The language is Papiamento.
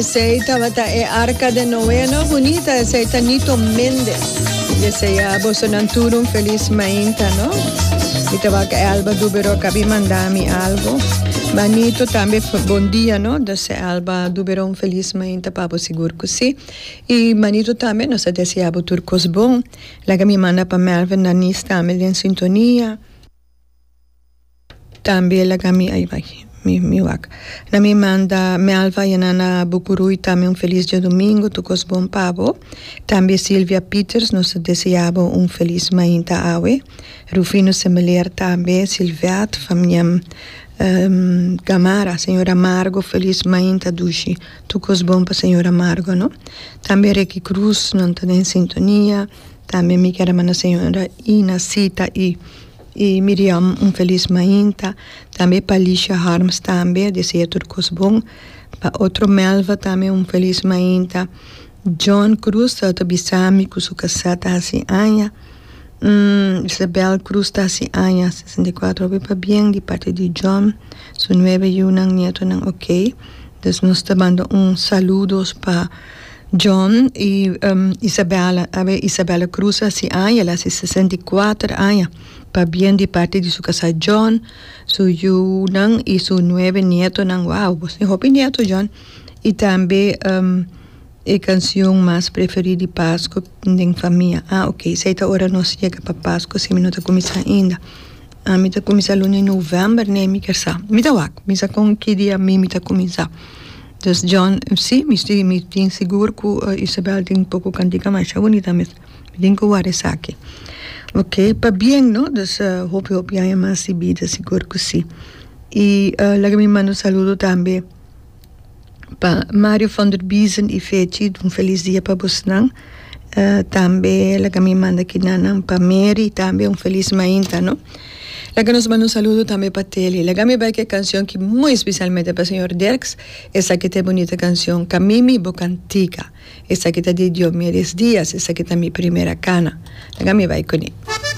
Esei tabata e arka den Noe. No bunita esei ta Nito Mendez. Y esei a boso nan tur un felis mainta no. Mi ta wak Elba Duberoc a bin manda mi algo. Ma Nito tambe bon dia no. Dese Elba Duberoc un felis mainta pa bo sigur cu si. Y Manito tambe nos a desea bo tur cos bon. Like mi manda pa Melvin Danis tambe den sintonia. Tambe el a ga mi, ai bai, mi, mi wak. Na mi manda Melva, Yanana Bucuru y tambe un feliz diadomingo, tur cos bon pa bo. Tambe Silvia Pieters, nos ta desea bo un feliz mainta awe. Rufino Semeler tambe, Silvette, famia Gamarra, señora Margo, feliz mainta dushi. Tur cos bon pa señora Margo, no. Tambe Ricky Cruz, nan ta den sintonia. Tambe mi quiero manda señora Ina Sita y. Y Miriam un feliz mainta tambe pa Lisha Harms tambe a desea tur cos bon pa otro Melva tambe un feliz mainta John Cruz ta ta bisami cu su casa ta haci aña umm Isabel Cruz ta haci aña sesenta y cuatro hopi pa bien di parte di John su nueve yunan nietonan ok nos ta manda un saludos pa John i Isabella Awe Isabella crusa si aña, el a hasi sesenta i kuater aña, pabien di parti di su kasá John, su yunan i su nuebe nietonan. Wao, bo tin hopi nieto John! I tambe e kansion mas preferí di Pasku den famia. Ah ok, esei ta ora nos yega pa Pasku si mi no ta kuminsá ainda. Ah mi ta kuminsá luna i novèmber ne mi kersá. Mi ta wak, mi sa kon ki dia mi mi ta kuminsá. Des John, Sí, mi si, mi tin sigur cu Isabel tin poco cantica masha bunita mes. Mi tin cu ward'e esaki. Ok, pabien no, dus hopi hopi aña mas di bida, sigur cu si. Y laga mi manda un saludo tambe pa Mario Van der Biesen y Fechi, un feliz dia pa bosnan. tambe laga mi manda kinanan pa Mary tambe un feliz mainta no laga nos manda un saludo tambe pa Telly laga mi bai ke cancion ki muy especialmente pa señor Derks esaki ta e bunita cancion camimi bo cantica esaki ta di Diomedes Diaz esaki ta mi primera cana laga mi bai cuni.